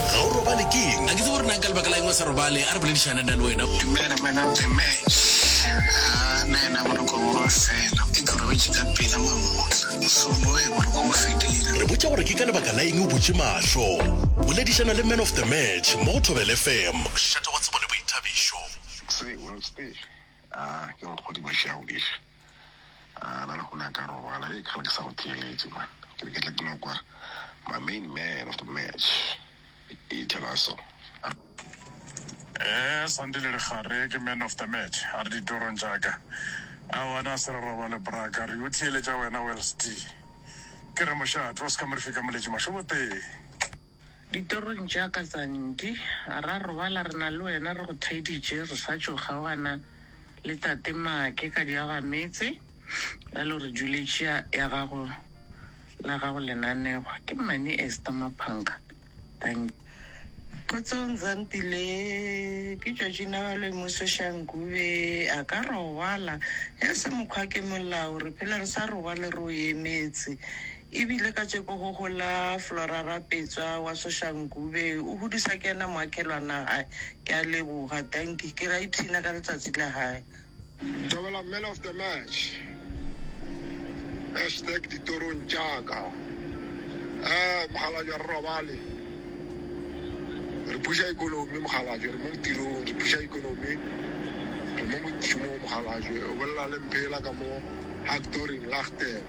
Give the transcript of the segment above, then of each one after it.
Ga o robale ke eng? A ke tsebe gore na ka lebaka la eng o sa robale. A re boledišane nna le wena. Dumela Madam Tembe. Ga na yena boroko bo fela. E ke robetše ka pela mamotla. Mohlomongwe boroko bo fedile. Re botša gore ke ka lebaka la eng o butše mahlo. Boledišana le Man of the Match mo go Thobela FM. O šetše go tsebo le boithabišo. Tsebo, tsebo. A ke nkgodibeše, a o diše. A na le go ne a ka robala? Hei, ka re ke sa go theeletše man. Ke be ke tla ke no kwa my main man of the match e tšhela so. Ee, Sandile re gare ke man of the match, a re ditorong tša ka. Aowa na se re robale bra ka re o theeletša wena Welsty. Ke re mošate o se ka mo re fika moletše mašoboteng. Ditorong tša ka tsa nti, ra robala re na le wena, re go theeditše re sa tšo kgaogana le tate Maake ka diagametse, bjale o re duletše ya gago la gago lenanegwa ke mmane Esther Maphanka. Dankie. Kgotsong Zampi le ke tšatši nawa le Muso Shangu be a ka robala ya se mokgwa ke molao re phela re sa robale re o emetse. E bile ka tseko go gola Flora Rapetswa wa Soshanguve o hudusa ke yena moakelwana gae. Ke a leboga. Dankie. Ke ra ipshina ka letsatsi la gae. Thobela man of the match hashtag ditorong tša ka um mokgalabje re robale re puša economy mokgalabje re mo tirong re puša economy re mo mošomong mokgalabje o bolela le mphela ka mo hactoring lagten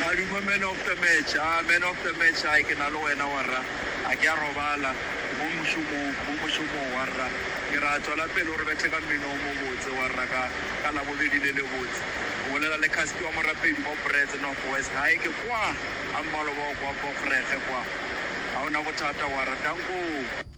Madume man of the match. Haa man of the match hai ke na le wena warra a ke a robala mo mošomong mo mošomong warra ke ra tswela pele o re bethe ka mmino o mobotse warra ka ka labobedi le lebotse o bolela le Caspi wa morapedi mo Brits North West hai ke kwaa a mmaloba o kwa Bokgrekge kwaa ha o na bothata warra dankoo.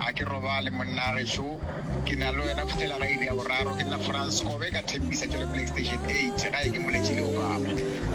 Ga ke robale monna gešo, ke na le wena go fihlela ga iri ya boraro. Ke nna Frans Kobe ka Tembisa Tswelopele Extension 8, gae ke moletše le Obama.